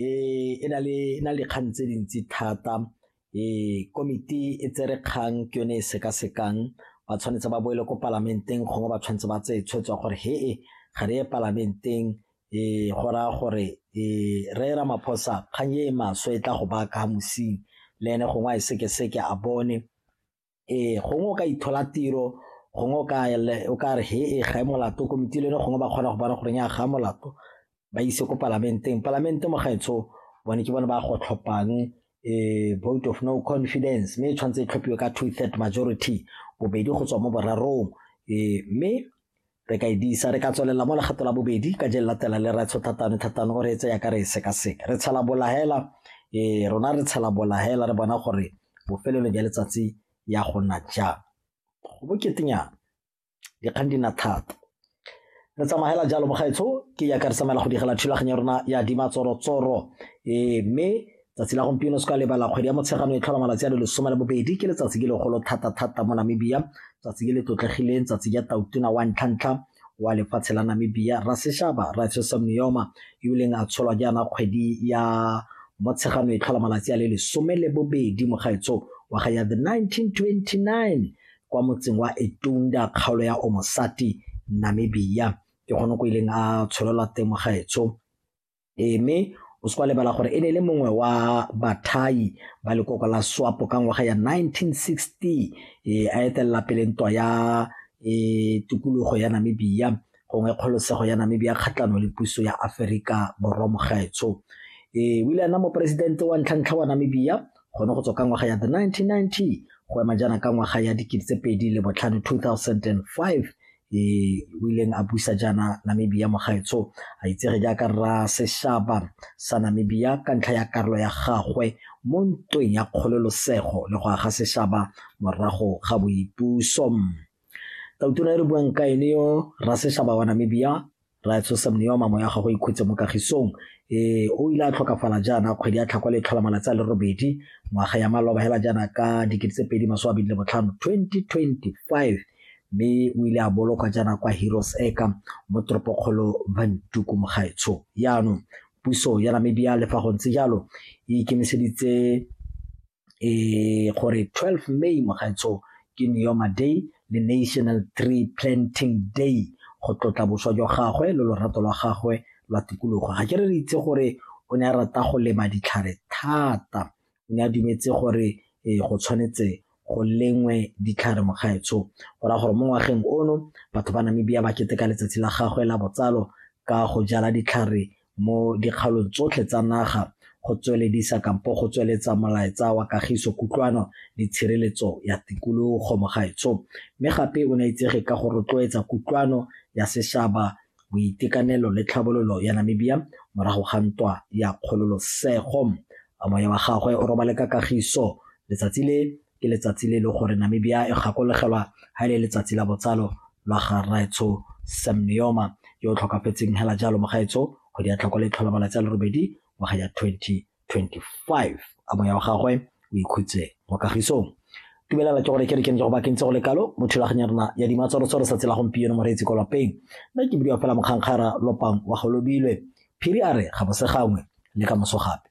e na le dikgang tse dintsi thata komiti e tsere kgang ke yone e sekasekang ba tshwanetse ba boele ko palamenteng gongwe ba tshwanetse ba tseye tshwetso gore he e ga re ye palamenteng um go raya gore um re era maphosa kgang e e maswe e tla go baka mosing le ene gongwe a e sekeseke a bone Ee, gongwe o ka ithola tiro, gongwe o ka o ka re he e ga e molato komiti le gongwe ba kgona go bona gore ya ga molato ba ise ko palamenteng. Palamente mo gaetsho bone ke bone ba go tlhophang um vote of no confidence mme e tshwanetse e tlhophiwe ka two third majority, bobedi go tswa mo borarong um mme Re ka e disa, re ka tswelela mo legato la bobedi ka je latela le ratsho thatano thatano gore e tseya ka re e sekaseka. Re tshela bolahela, e rona re tshela bolahela re bona gore bofelelo jwa letsatsi ya go nna jang. Go boketenyana, dikgang di nna thata. Re tsamagela jalo mo gaetsho, ke yaka re tsamaela go digela thulaganyo ya rona ya dimatsorotsoro mme Tsatsi la gompieno se ka lebala kgwedi ya Motsheganong e tlhola malatsi a le lesome le bobedi ke letsatsi ke legolo thata-thata mo Namibia tsatsi ke le tlotlegileng tsatsi ja tautona wa ntlhantlha wa lefatshe la Namibia Raseshaba Raitsosa Miyoma yo leng a tsholwa jaana kgwedi ya Motsheganong e tlhola malatsi a le lesome le bobedi mogaetso wa ga ya the 1929 kwa motseng wa Etunda kgaolo ya Omosati Namibia ke gone ko ileng a tsholelwa teng mogaetso Ee, mme o se kwa lebala gore e ne e le mongwe wa bathai ba lekoko la swapo ka ngwaga ya 1960 e a etelela pele ntwa ya e tikologo ya namibia gongwe kgolosego ya namibia kgatlhanong le puso ya aferika borwa mogaetsho e o ile a nna moporesidente wa ntlhantlha wa namibia gone go tswa ka ngwaga ya the 1990 go ema jaana ka ngwaga ya dikete tse pedi le botlhano 2005 e o ileng a busa jaana namibia mogaetsho a itsege jaaka rra seshaba sa namibia ka ntlha ya karolo ya gagwe mo ntweng ya kgololosego le go aga seshaba morago ga boipuso tautura e re buang ka ene yo rra seshaba wa namibia Rra Tshosa Mnewa mamo ya gagwe ikhutse mo kagisong. Ee, o ile a tlhokafala jaana kgwedi ya tlhakwa le tlhola malatsi a le robedi ngwaga ya maloba hela jaana ka dikete tse pedi masome a bedi le botlhano 2025 mme o ile a bolokwa jaana kwa heroes eka mo toropokgolo vantuku mogaetsho yaanong puso ya namibia le fa go ntse jalo e ikemiseditse um gore twelve May mogaetsho ke Neoma Day le National Tree Planting Day go tlotla boswa jwa gagwe le lorato lwa gagwe lwa tikologo ga ke re re itse gore o ne a rata go lema ditlhare thata o ne a dumetse gore um go tshwanetse go lengwe ditlhare mogaetsho go raya gore mo ngwageng ono batho ba Namibia ba keteka letsatsi la gagwe la botsalo ka go jala ditlhare mo dikgaolong tsotlhe tsa naga go tsweledisa kampo go tsweletsa molaetsa wa kagiso kutlwano le tshireletso ya tikologo mogaetsho mme gape o ne a itsege ka go rotloetsa kutlwano ya sešaba boitekanelo le tlhabololo ya namibia morago ga ntwa ya kgololosego moya wa gagwe o robale ka kagiso letsatsi le ke letsatsi le e leng gore Namibia e gakologelwa ha e le letsatsi la botsalo lwa ga rraetsho Sam Nujoma yo o tlhokafetseng hela jalo mogaetsho go di a tlhoko le tlhola malatsi a le robedi ngwaga ya 2025 a moya wa gagwe o ikhutse mo kagisong dumelela ke gore ke re ke ntse go bakentse go le kalo mo thulaganya rona ya dimatsorotso re sa tsela gompieno moreetsi ko lapeng nna ke bidiwa fela mokgangkgara lopang wa golobilwe phiri a re ga bosegangwe le ka moso gape